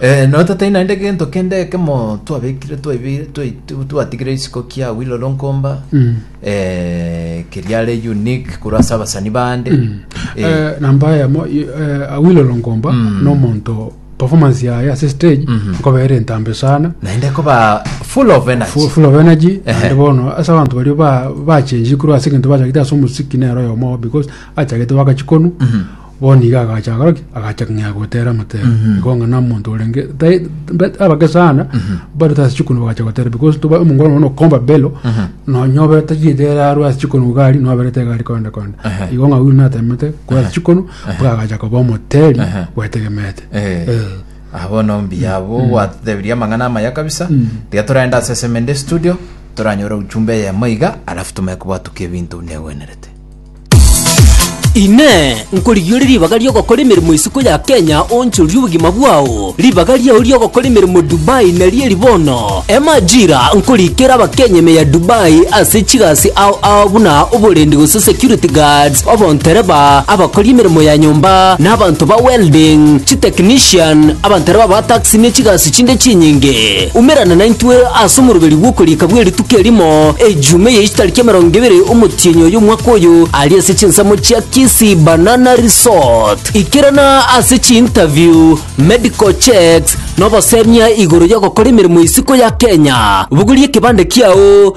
Eh, no tatai naende gento kende ekemo twabekire twaibi- twai- tu- twatigire isiko kia Willow Lonkomba Mm. eh, keriare unique korwa ase abasani bande Eh, Eh, namba yamo i- eh, awilo longomba Mm. nomonto performance yaye ase stage Mhm. nkobeere entambe sana naende koba full of energy Fu- full of energy Ehe. ande bono ase abanto bario ba- bachenji korwa ase egento bachagete ase omosiki nero oyomo because achagete wakachikonu Mhm. Bono iga agacha agakora ki? agacha ng'a gotera motero igo ng'a na omonto orenge tai- mbe- abake sana bareta ase chikoni bagacha gotera because toba omongwana nonya okomba belo nonya obe tachigete ere arwe ase chikoni gokari nonya oberete egari konde konde Ehe. igo ng'a oyio natemete korwa ase chikoni mpaka agacha koba omoteri Ehe. bwetegemete Eh. Eh. Ah, bono mbuya abo gwatutebirie amang'ana amaya kabisa tiga toragenda ase semende studio toranyore uchumbe eyemo iga alafu tume kobwatukia ebinto negwenerete Inee! Nkorigia ore ribaga ri'ogokora emeremo isiko ya Kenya oonchorie obogima bwao? Ribaga riao ri'ogokora emeremo Dubai nario eri bono. Emajira nkorikera Abakenya ime ya Dubai ase chigasi ao ao buna oborendi gose security guards, obontereba, abakori emeremo ya nyomba, na abanto ba welding, chitechnician, abantereba ba taxi ne chigasi chinde chinyinge. Umerana naintwe ase omoroberi bw'okoriika bwe rituko erimo, Ejuma eye chitariki emerongo ebere omotienyi oyo omwaka oyo, aria ase chinsemo chia Kisii Banana Resort. Ikerana ase chiinterview, medical checks, na obosemia igoro y'ogokora emeremo isiko ya Kenya. Bogoria ekebande kiao.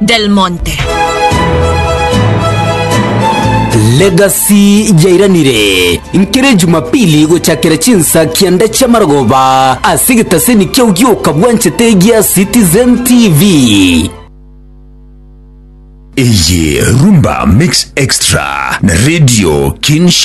Del Monte. Legacy yairanire nkere Jumapili gochakera chinsa kianda chia marogoba ase egetaseni kiao gioka bwanchete gia Citizen TV. Eye Rumba Mix Extra na Radio Kinshasa.